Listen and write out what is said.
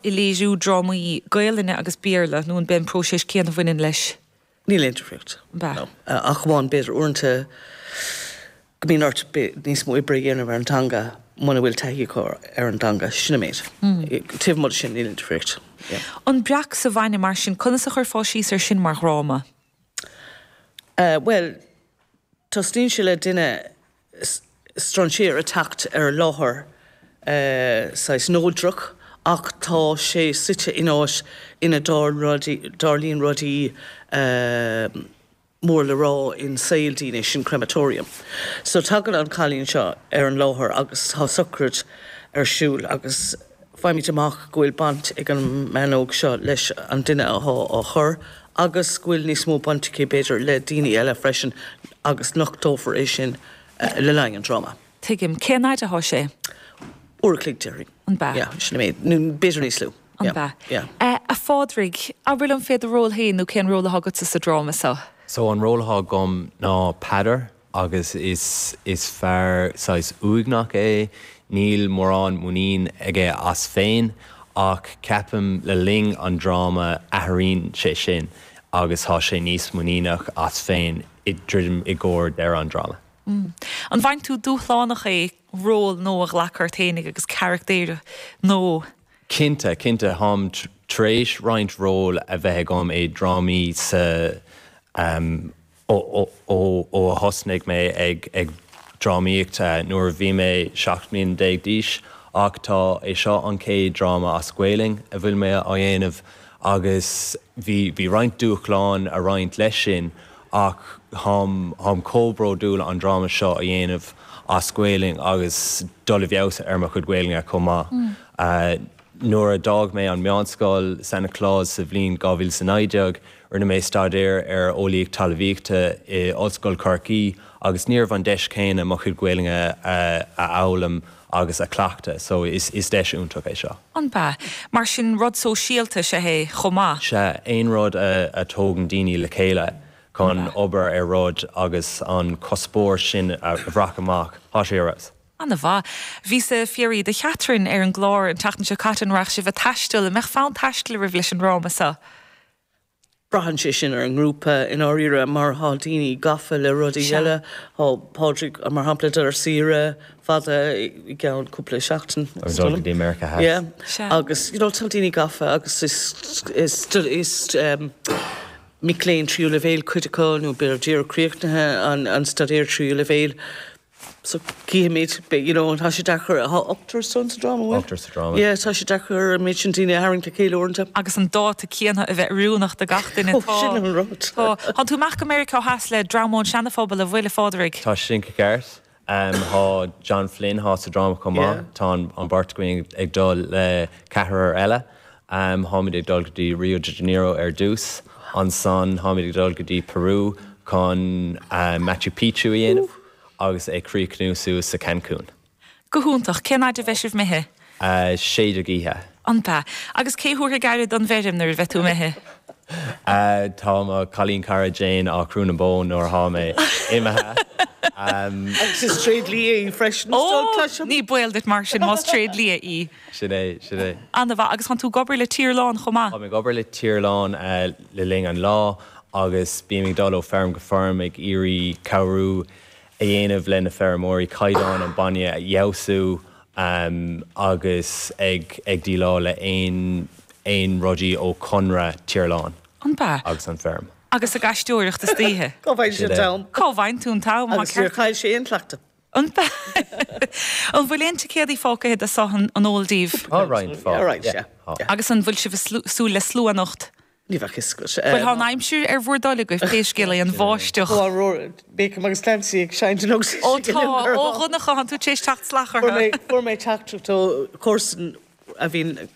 i léiriú drámaí Gaelainne agus Béarla nó an b'é an próiseas céanna a bhaineann leis? Níl aon difríocht. Ab ea. No. Ach amháin b'fhéidir uaireanta go mbíonn ort níos mó oibre a dhéanamh ar an dteanga muna bhfuil taithí acu ar an dteanga. Sin an méid. Taobh amuigh de sin níl aon difríocht. Yeah. An Breac sa bhainne mar sin, conas a chuirfeá síos ar sin mar dhráma? Bhuel, tosnaíonn sé le duine strainséir ag teacht ar láthair saghas neodrach ach tá sé suite in áit ina dtarlaíonn rudaí mór le rá in saol daoine, sin crematorium. So tagann an cailín seo ar an láthair agus tá socraid ar siúl agus. Faighimid amach go bhfuil baint ag an mbean óg seo leis an duine athá á chur agus go bhfuil níos mó baint aici, b'fhéidir, le daoine eile freisin agus nochtófar é sin le linn an dráma. Tuigim. Cén fhaid athá sé? Uair a chloig, déarfainn. An b'ea? Yeah, sin an méid, nó b'fhéidir níos lú. An b'ea? Yeah. A Phádraig, abair linn fé do ról fhéin nó cén ról athá agatsa sa dráma seo? So, an ról athá agam ná Peadar. Agus is is fear saghas uaigneach é, níl mórán muinín aige as féin, ach ceapaim le linn an dráma athraíonn sé sin agus tá sé níos muiníneach as féin ag druidim i gcomhair deireadh an dráma. An bhfaigheann tú dúshlánach é ról nó a ghlacadh ort fhéinig agus caractair nó? Cinnte, cinnte. Táim tar éis roinnt ról a bheith agam i drámaí sa ó a thosnaigh mé ag drámaíocht nuair a bhí mé 17 mbliana d'aois ach tá é seo an chéad dráma as Gaolainn a bhfuil mé á dhéanamh agus bhí roinnt dúshláin ag roinnt leis sin ach táim chomh bródúil an dráma seo a dhéanamh as Gaolainn agus dul i bhfeabhas ar mo chuid Gaolainne chomh maith. Nuair a d'fhág mé an meánscoil, Sancta Clare's, sa bhliain 2019, Rinne mé staidéar ar Eolaíocht Talamhaíochta i Ollscoil Chorcaí agus ní raibh an deis chéanna mo chuid Ghaeilge a fhoghlaim agus a chleachtadh so is deis iontach é seo. An b'ea? Mar sin rud sóisialta is ea é chomh maith? Sea, aon rud a tógann daoine le chéile chun obair ar rud agus an cuspóir sin a bhaint amach, tá sé go deas. Ana mhaith. Bhí sé fiafraithe de Chaitríona ar an gclár an tseachtain seo caite, an raibh sibh a' taisteal, an mbeadh fonn taistil oraibh leis an ndráma so? Braitheann sé sin ar an ngrúpa i ndáiríre. Mar tá daoine gafa le rudaí Sea. eile. Tá Pádraig, mar shampla, ag dul ar saoire fada i gceann cúpla seachtain. Ag dul go dtí Meiriceá Theas. Yeah. Sea. Agus you know tá daoine gafa agus is is is mic léinn tríú leibhéil cuid acu nó b'fhéidir díreach críochnaithe an an staidéar tríú leibhéil. so caithfimid you know tá sé deacair Tá ochtar againn sa dráma, bhfuil? Ochtar sa dráma. yeah tá sé deacair an méid sin daoine a tharraingt le chéile uaireanta. agus an dáta céanna a bheith oiriúnach do gach duine. Ó, Tá, sin an rud. tá, tánn tú amach go Meiriceá Theas le dream ón Seana-Phobal an bhfuil a Phádraig. Tá san ceart. Em, tá John Flynn, atá sa dráma chomh maith. Yeah. Tá an, an bheirt againn ag dul le ceathrar eile. Táimid ag dul go dtí Rio de Janeiro ar dtús, ansan táimid ag dul go dtí Peru chun Machu Picchu a dhéanamh agus ag críochnú suas sa Cancun. Go hiontach. Cén fhaid a bheidh sibh imithe? Sé déag oíche. An b'ea? Agus cé thabharfaidh aire don bhfeirm nuair a bheidh tú imithe? Tá mo chailín cara Jane ag crú na bó nuair atá mé imithe. Agus is tréidlia í freisin, is dóigh, cloisim? Ní baol duit mar sin más tréidlia í. Sin é, sin é. Ana-mhaith, agus tánn tú ag obair le Tír Lán chomh maith? Tá mé ag obair le Tír Lán le linn an lá agus bím ag dul ó feirm go feirm ag iarraidh cabhrú a dhéanamh le na feirmeoirí caighdeán an bainne a fheabhsú agus ag ag díleáil le aon aon rudaí ó Conradh Tír Lán An bea? agus an feirm. Agus ag aisteoireacht istoíche. Cá bhfaigheann sibh Sin é. an t-am? Cá bhfaigheann tú an t-am? Agus níor chaill sé aon chleachtadh. An bhfuil aon ticéadaí fágtha de seo an eol díbh? Tá roinnt fágtha. Agus an bhfuil sibh ag súil le slua anocht? Ní bheadh fhios agat. Bhuel tá an aimsir ar bhur dtoil agaibh pé scéal é, an bháisteach. Tá Beacom agus Clancy ag seinnt anocht. Ó tá, a Dhonncha, tánn tú tar éis teacht isteach. Fuair mé teachtaireacht ó chomharsa a bhíonn ag.